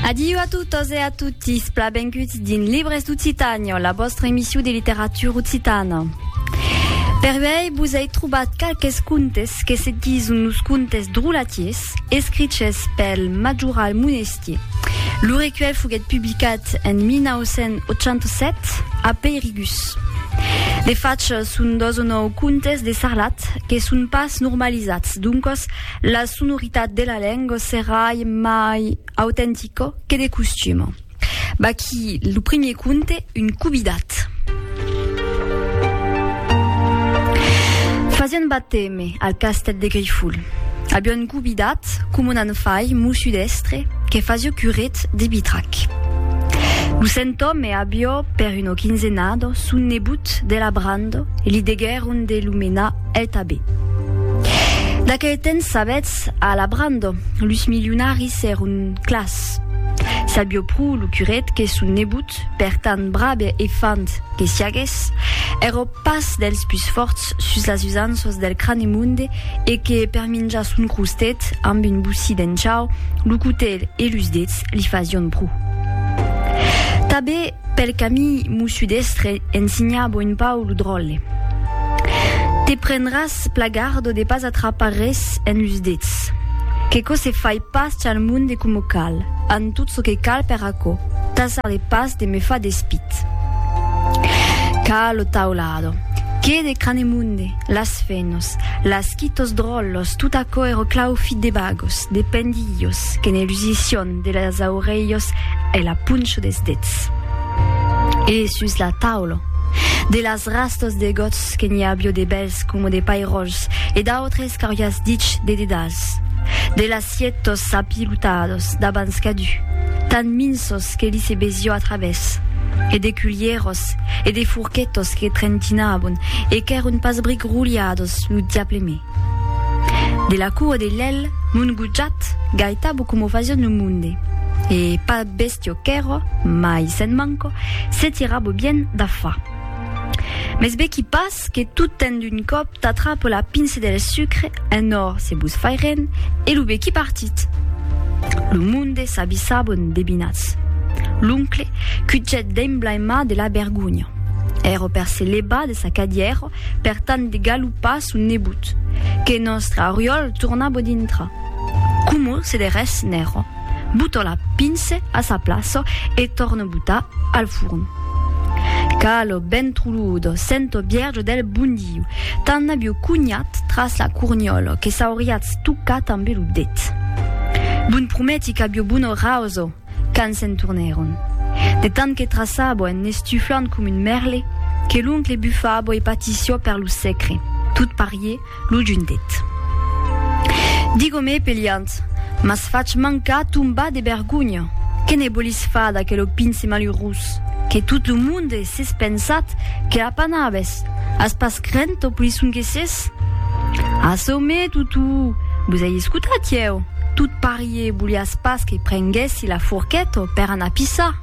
Adiu a totes e a totis, pla benguts dins Libres d'Occitània, la vostra emissió de literatura occitana. Per uèi vos ai trobat qualques contes que se dison los contes drolatiers, escriches pel majoral Monestier. Lo recuèlh foguèt publicat en 1987 a Peirigus. De fach, son dos o nòu contes de sarlat que son pas normalizats, doncas La sonoritat de la lenga serai mai autentica que de costuma. Vaquí lo primier conte, Un cubidat. Fasiá un bateme al castèl de Grifol. Aviá un cubidat, coma un anfai, mossut èstre, que fasiá curet de bitrac. Lo sent òme aviá, per una quinzenada, son nebot de la branda e li deguèron de lo menar El tabé. D'aquel temps sabetz, a la brando, lus milionaris èron clars. Sabió pro lo curet que son nebot, per tant brave e fand que siagues, èro pas dels pus fòrts sus las usanças del Cranemonde e que per minjar son crostet amb un bocí d'enchau, lo cotelh e lus dets li fasión pro. Tabé. Pel camí m'o sudestre ensinhabo un pau lo dròlle. Te prendràs plagardo de pas atrapar res en los dets. Qu'eco se fai pas chal monde coma cal, an tot ço que cal per aquo, tasar de pas de me far despit. Ca lo taulado, que de Cranemunde, las fenos, las quitos dròllos, tot aquo ero claufit de bagos, de pendilhos, que ne lusission, De las aurelhos e la poncho des dets. E sus la taula. De las rastas de gots que n'i avió de bèls coma de pairòls e d'autres qu'auriás dich de dedals. De las sietos apilotados d'abans cadu, tan minsos que li se besió a travès. E de culhieros e de forquetos que trentinabon e qu'èron pas bric roliados lo diable me. De la cua de lèl mon gojat gaitabo coma o fasion lo monde, e pas bèstia qu'èra, mai se'n manca, se tirabo bien da fa. Mès vèqui pas que tot ten d'un còp t'atrapa la pince del sucre en or se vos fai ren e lo vèqui partit. Lo monde s'abissaba endebinatz. L'oncle cujèt d'emblaimar de la vergonha. Èra per se levar de sa cadièra per tant de galopar son nebot, que nòstre Oriòl torna bo dintra. Coma se de res n'èra, boto la pince a sa plaça e torno botar al forn. Calo ben truludo, sento bièrjo del bondiu, tan aviu cunhat tras la corniòla que s'auriatz tocat ambe lo det. Bon prometi qu'aviu bona rauso! Quand se'n tornèron. De tant que traçabo en n'estuflant com un mèrle, que l'oncle bufabo e patissió per lo secre, tot parié, lo juntet. Digomé peliant, m'as fach mancar tombar de bergonha! Que ne bolis far d'aquelo pince malurós, que tot lo monde s'es pensat que l'apanabes? As pas crent tò polisson que ses? Açò, mé, Tutu, vos ai escotat ieu, tot parié, Ié, voliás pas que prenguèssi la forqueta per anar pisar?